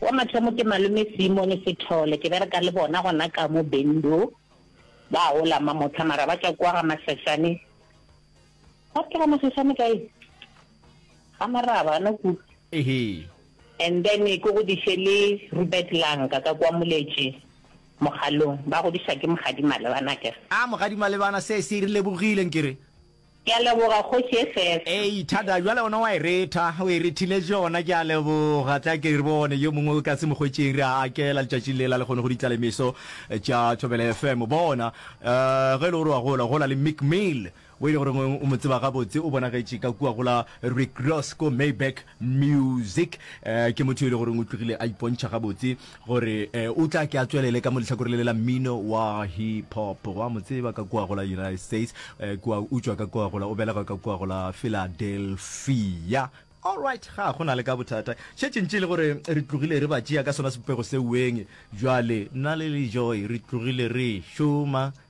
Wa mathomo ke Malome Simone Sethole, ke bereka le bona gona ka mo Bendu, ba gola Mamotha mara ba tšwa kwa ga Masesane, ga ke ga Masesane kae? Ga Maraba no ku. Ehe. And then ke godiše le Rubert Lanka ka kwa Moletše Mogalong, ba godiša ke Mogadi Malebana akere. Ah Mogadi Malebana se se re lebogile nkere. Ke a leboga, Kgoši SS. Ei, Thada, bjale ona wa e retha, o e rethile tšona, ke a leboga. Tla ke re bone yo mongwe ka se mo hwetšeng, re a akela letšatšing lela le kgone go ditla lemeso tša Thobela FM. Bona, um ge e le gore wa gola, gola le Mick Mill, wo e le goreng o mo tseba gabotse, o bonagetše ka kua go la Rick Ross ko Maybach Music. Um ke motho yo e le goreng o tlogile a ipontšha gabotse gore o tla ke a tswelele ka mo lehlakore le le la mmino wa hip hop. Go a mo tseba ka kua go la United States, kua utswa ka kua go la o belegwa ka kua go la Philadelphia. Alright, ga go na le ka bothata. Šetše ntše e le gore re tlogile re ba tšea ka sona sebopego seo weng. Bjale nna le Lejoy re tlogile re šoma.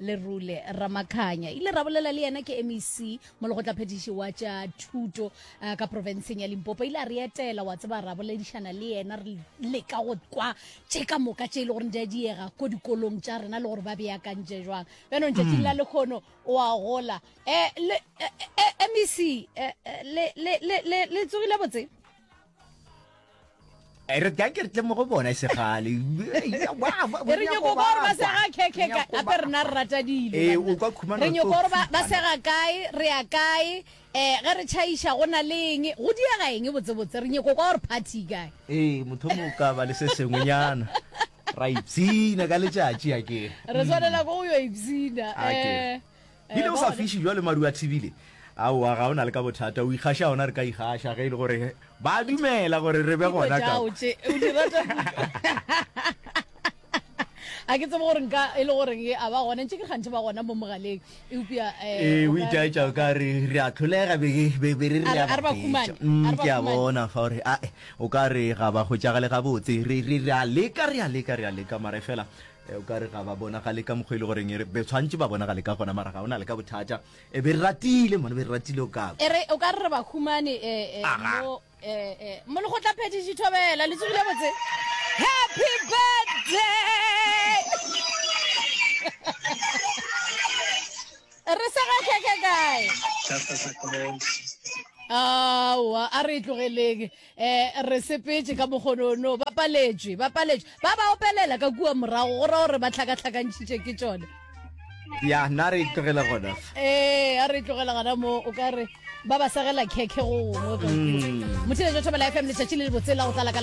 lerule ramakhanya ile ra bolela le yena ke mec molegotlaphethiši wa tša thuto uh, ka profenseng ya limpopo ile a re etela wa tseba ra boledišana le yena re leka go kwa tše ka moka tše e le gore di a diega ko dikolong tša rena le gore ba beakantše jwang bjanong tšatšing la mm. lekgono wa gola um mec le tsogile botse re ka ke re tle mo go bona segale e re nyoko gore ba sega khekhe ka ape rena re rata dilo ee o kwa khumana re nyoko gore ba sega kae re ya kae eh ge re chaisha go na le eng go diega eng botse botse re nyoko kwa gore party kae ee motho mo ka ba le se sengwenyana ra ipsina ka letšatši a ke re tshwanela go yo ipsina eh Bile o sa fiši jwale maru a thibile? Aowa, ga o na le ka bothata, o ikgaša gona, re ka ikgaša ge e le gore ba a dumela gore re be gona ka. a ke tsebe gore nka e le goreng e a ba gona ntse ke gantse ba gona mo mogaleng eupša eh, eh, o itaetša o ka re re a tlholega be re re a ba fetša mm, ke a bona fa gore ae o ka re ga ba go tšagale gabotse re a leka re a leka re a leka mare fela Eh, o ka re ga ba bonagale ka mokgwa e le goreng ere be tshwantse ba bonagale ka gona mara ga o na le ka bothata e be re ratile mone be re ratile o kako ere o ka re re ba humane eh, eh, mo mo le go tla phedi ditho bela le tsogile botse happy birthday re sa ga keke kae awa a re e tlogeleng eh re sepetse ka mogonono ba paletšwe ba paletšwe ba ba opelela ka kua morago go ra gore ba tlhakatlhakantšhitše ke tšone ya nna re tlogela gona ee a re tlogela gona mo o ka re ba ba segela khekhe go gongwe mm. motheletšo thobela fm letšatši le le botsela go tlala ka